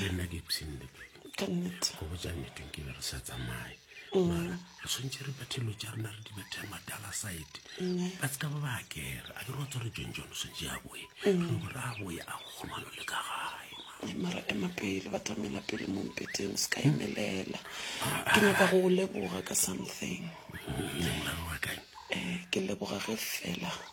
le nna ke epseng le go botsa nnete ke be re sa tsamaye mara re tshwanetse re bathelo tsa rena re di bathe madala side ba se ka ba ba kere a ke re wa tswa re john john o tshwanetse a boye gore a boye a go kgomano le ka gae mara ema pele ba tlamela pele mo mpeteng o se ka emelela ke nyaka go o leboga ka something um ke leboga ge fela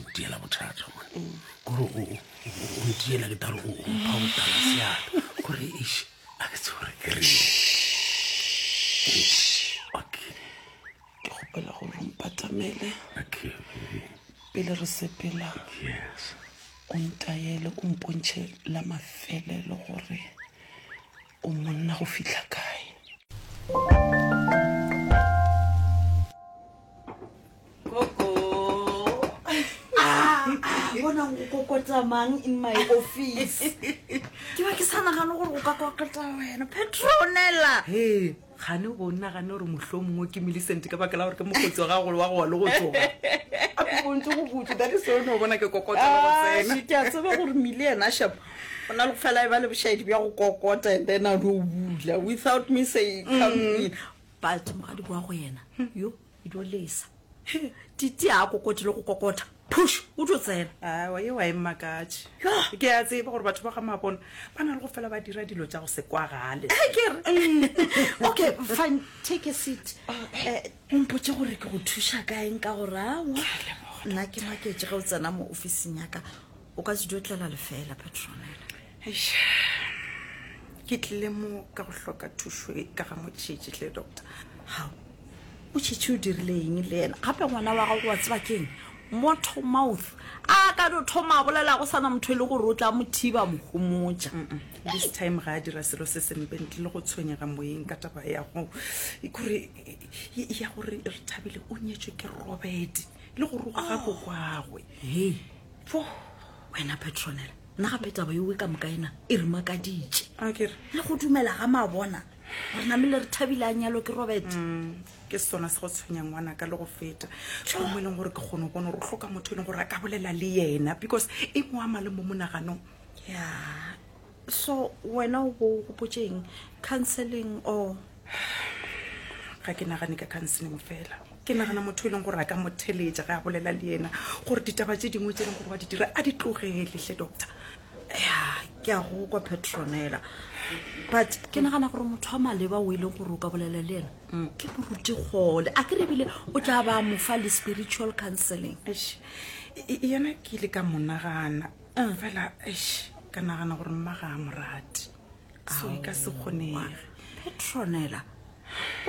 ntiela bothata mone kore o ntiela ke tare o mpha go tala seata kore eš a ke tse gore ke reng okay ke gopela gore o mpatamele okay pele re sepela yes o ntaele o mpontšhe la mafelelo gore O monna go fihla kae? Koko. Ah, ah, bona go kokota mang in my office. Ke ba ke sa nagano gore go ka kokota wena. Petronella. Hey. Kgane go nagane gore mohlomongwe ke Millicent ka baka la gore ke mokgotsi wa gago wa gowa le go tsoga. A ke bontse go butse, that is o no bona ke kokota le go Ah, tsena. shit, a tseba gore mile yena shap o na le go fela e ba le bošaedi bja go kokota and then a no bula without me say come in ba tsoga di boa go yena yo Edo lesa. He, Titi a kokoti le go kokota. Push, o tlo tsena. Awa, yeo a e mmakatše. Yoh! Ke a tseba gore batho ba ga Mabona ba na le go fela ba dira dilo tša go se kwagale. He, ke re. Okay, fine, take a seat. Eh, o mpotše gore ke go thuša ka eng ka gore awa nna ke maketše ge o tsena mo ofising ya ka. O ka se dio tlela lefeela, Petronella. Eish. Ke tlile mo ka go hloka thušo e ka ga motšhetši tle doctor. Hao. O tšhetši o dirile eng le yena? Gape ngwana wa gago wa tseba keng? Motor mouth. A ka no thoma a bolela go sana motho e le gore o tla mo thiba mo homotša. This time ga a dira selo se sempe ntle le go tshwenyega moyeng ka taba ya go e kore e- ya gore re thabile o nyetšwe ke Robert le go roga ga kokwagwe. Hei. Fo wena petronela nna gape taba yowe ka moka ena e re makaditše le go dumela ga mabona gore namele re thabile a nyalo ke robert mm, ke sona se go tshwenyang ngwana ka le go feta mo e leng gore ke kgone bona gore o tlhoka motho e leng gore a ka bolela le yena because e mo ama le mo monaganong ya so wena o bo o gopotšeng counseling or ga ke nagane ka counseling fela ke nagana motho e leng gore a ka mo theletša ge a bolela le yena gore ditaba tse dingwe tse e leng gore wa di dira a di tlogelehle doctor ya ke a go kwa petronela but ke nagana gore motho wa maleba o e leng gore o ka bolela le yena mm. ke moruti gole a ke rebile o tla ba mofa le spiritual counseling yena ke ile ka monagana ah, fela eish ka nagana gore mma ga a morate so e ka se kgonege petronela o